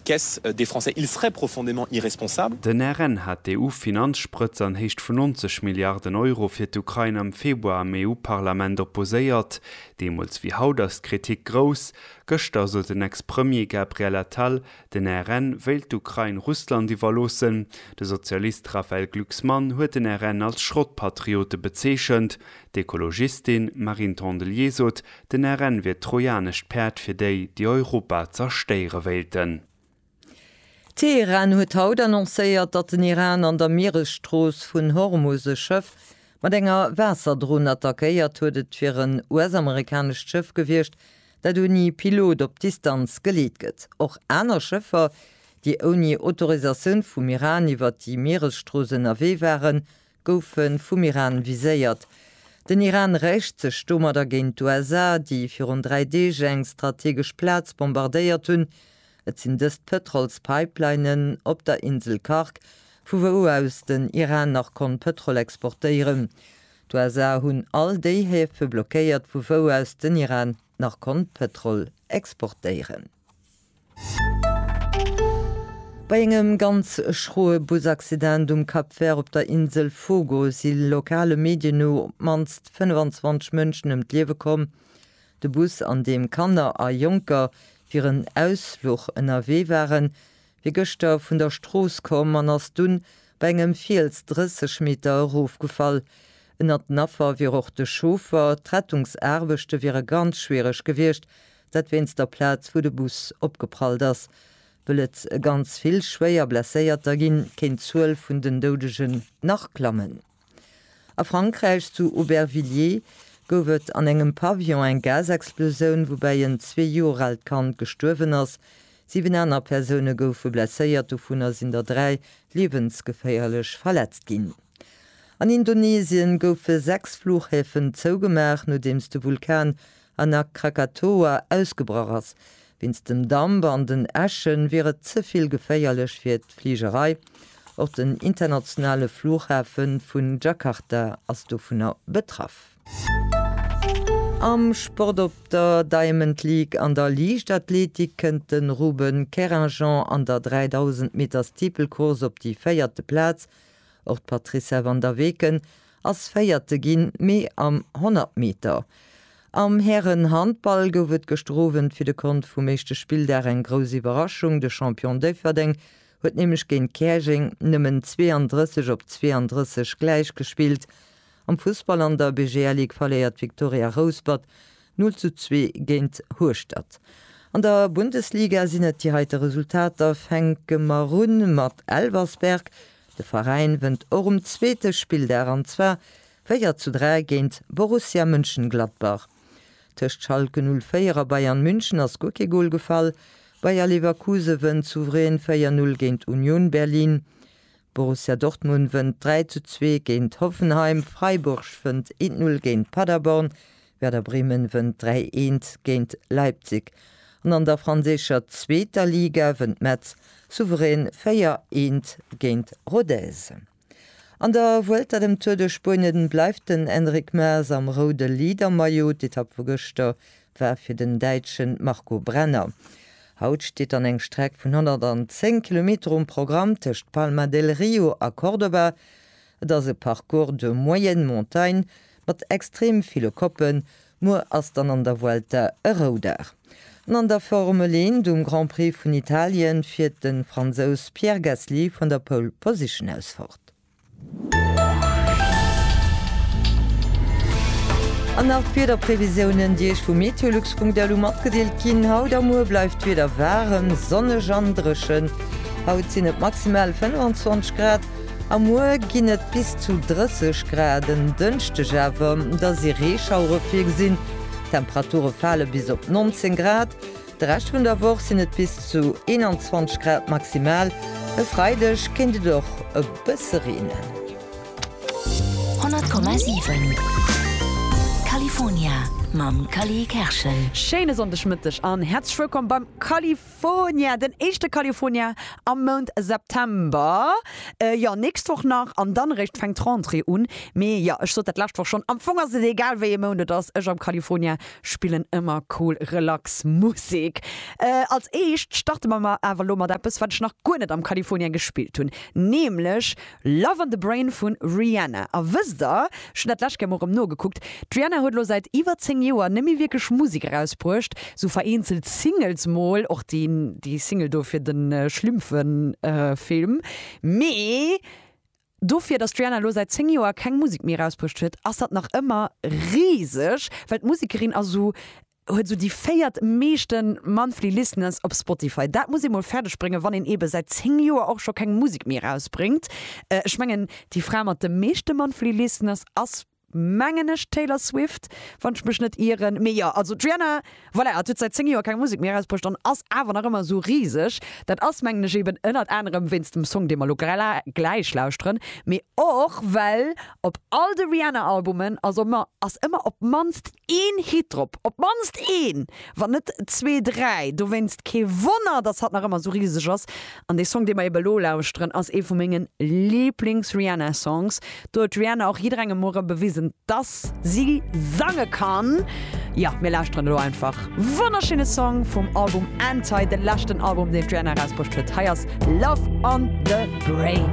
Qu'est-ce des Français? Ils seraient profondément irresponsables. Den RN hat d'EU-Finanzsprëtz an Héicht vun 90 Milliarden Euro fir d'Ukrain am Februar am EU-Parlament opposéiert. Deemools wéi haut ass d'Kritik grouss. Gëschter sot den Ex-Premier Gabriel Attal, den RN wéilt d'Ukrain Russland iwwerloossen. De Sozialist Raphaël Glucksmann huet den RN als Schrottpatriote bezeechent. D'Ekologistin Marine Tondelier sot, Den RN wier d'trojanescht Päerd fir déi, déi Europa zerstéiere wéilten. Teheran huet haut annoncéiert, datt den Iran an der Mieresstrooss vun Hormus e Schëff mat enger Waasserdron attackéiert huet. Et wier en US-amerikanescht Schëff gewiescht, dat ouni Pilot op Distanz geleet gëtt. Och aner Schëffer, déi ouni Autorisatioun vum Iran iwwer déi Mieresstrooss ënnerwee waren, goufe vum Iran viséiert. Den Iran räicht sech domadder géint d'USA, déi virun dräi Deeg eng strategesch Plaz bombardéiert hunn. Et sinn dëst d'Pëtrolspipelinen op der Insel Karg, vu wou aus den Iran nach konnt Pëtrol exportéieren. D'USA hunn all déi Häfe blockéiert, vu wou aus den Iran nach konnt Pëtrol exportéieren. Bei engem ganz schroe Busaccident um Cap Vert op der Insel Fogo si lokale Medien no op d'mannst 25 Mënschen ëm d'Liewe komm. De Bus, an deem Kanner a Jonker fir en Ausfluch ënnerwee waren, wier gëschter vun der Strooss komm an ass dunn bei engem Fiels 30 Meter erofgefall. Ënnert den Affer wier och de Chauffer. D'Rettungsaarbechte wiere ganz schwiereg gewiescht, Dat wéinst der Plaz, wou de Bus opgeprallt ass. Wëll et ganz vill schwéier Blesséierter ginn, kéint d'Zuel vun den Doudegen nach klammen. A Frankräich, zu Aubervilliers, gouf et an engem Pavillon eng Gasexplosioun, woubäi en zwee Joer aalt Kand gestuerwen ass. Siwen aner Persoune goufe blesséiert, dovunner sinn der dräi liewensgeféierlech verletzt ginn. An Indonesien goufe sechs Fluchhäfen zougemaach, nodeems de Vulkan an a Krakatoa ausgebrach ass. Wéinst dem Damp an den Äschen wier et ze vill geféierlech fir d'Fligerei. Och den internationale Flughafe vu Jakarta ass dovunner betraff. Am Sport Op der Diamond League an der Liichtathletik kënnt de Ruben Keringjand an der 3000 Meter Steeplecourse op déi véierte Plaz Och d'Patricia Van der Weken ass Véierte ginn, mee am 100 Meter. Am Hären-Handball gouf et gëschter Owend fir de Kont vum éischte Spilldag eng grouss Iwwerraschung. De Champion Déifferdeng huet nämlech géint Käerjeng nëmmen 32 op 32 gläich gespillt Am Fussball an der BGL Ligue verléiert d'Viktoria Rouspert 0 zu 2 géint Hueschtert. An der Bundesliga sinn et déi heite Resultater, fänke mer un mat Elversberg, de Veräin wënnt och um zweete Spilldag an zwar 4 zu 3 géint Borussia Mönchengladbach. Tëscht Schalke 04 a Bayern München ass guer kee Gol gefall, Bayer Leverkusen wënnt souverän 4 0 géint Union Berlin. Borussia Dortmund wënnt 3 zu 2 géint Hoffenheim, Freiburg fënnt eent 0 géint Paderborn, Werder Bremen wënnt 3 eent géint Leipzig an an der franséischer zweeter Liga wënnt Metz souverän 4 eent géint Rodez. An der Vuelta dem Tour de Spuenien bleift den Enric Maes am roude Leadermaillot. D'Etapp vu gëschter war fir den Däitsche Marco Brenner. Haut steet dann eng Streck vun 110 Kilometer um Programm tëscht Palma del Rio a Córdoba. Et ass e Parcours de moyenne montagne mat extrem ville Koppen. Muer ass dann an der Vuelta e Roudag. An an der Formel 1 um Grand Prix vun Italien fiert de Fransous Pierre Gasly vun der Pole Position aus fort. An nach d'Wiederprevisiounen, déi Iech vu meteolux.lu matgedeelt ginn. Haut a muer bleift d'Wieder waarem, sonneg an dréchen. Haut sinn et maximal 25 Grad a muer ginn et bis zu 30 Grad. En Dënschdeg awer, da si Reeschauere virgesinn. D'Temperature fale bis op 19 Grad. De Rescht vun der Woch sinn et bis zu 21 Grad maximal, e Freideg kéint et och e bësse reenen. 100,7 California mam Cally Kerschen. Schéine Sonndegmëtteg an häerzlech wëllkomm beim California, den éischte California am Mount September. Jo, nächst Woch nach an dann eréischt fänkt d'Rentrée un. Mee jo, ech sot dat d'lescht Woch schonn, am Fong ass et egal wéi ee Mount et ass, ech am California Spillen ëmmer cool relax Musek. Als éischt starte mer mar awer elo mat eppes, wat ech nach guer net am California gespillt hunn, nämlech Love on the Brain vun Rihanna. A wësst der, ech hunn dat d'lescht gär mol erëm nogeguckt, d'Rihanna huet elo säit iwwer 10 Joer net méi wierklech Musek erausbruecht, sou vereenzelt Singles mol, och déi Single do fir de Schlimmfen-Film, mee Dofir, dass d'Rihanna elo säit 10 Joer keng Musek méi erausbruecht huet, ass dat nach ëmmer riseg, well d'Musekerin ass esou, huet esou déi véiert meeschte Monthly Listeners op Spotify. Dat muss ee mol fäerdeg bréngen, wann een eebe säit 10 Joer och scho keng Musek méi erausbréngt. Ech mengen, déi Fra mat de meeschte Monthly Listeners ass mengen ech, d'Taylor Swift, wann ech mech net ieren. Mee jo, also d'Rihanna, voilà, hat säit 10 Joer keng Musek méi erausbruecht an ass awer nach ëmmer esou riseg. Dat ass, mengen ech, eben ënnert anerem wéinst dem Song, dee mer elo gläich lauschteren, mee och well op all de Rihanna-Albumen ass ëmmer, ass ëmmer op d'mannst Een Hit drop, op d'mannst een, wann net zwee, dräi. Dowéinst kee Wonner, dass hatt nach ëmmer esou riseg ass. An dee Song, dee mer ebe elo lauschteren, ass ee vu menge Liiblings-Rihanna-Songs. Do huet d'Rihanna och jidderengem muere bewisen, dass si sange kann. Jo, mir lauschteren elo einfach. Wonnerschéine Song vum Album Anti, de leschten Album, deen d'Rihanna erausbruecht huet. Hei ass Love on the Brain.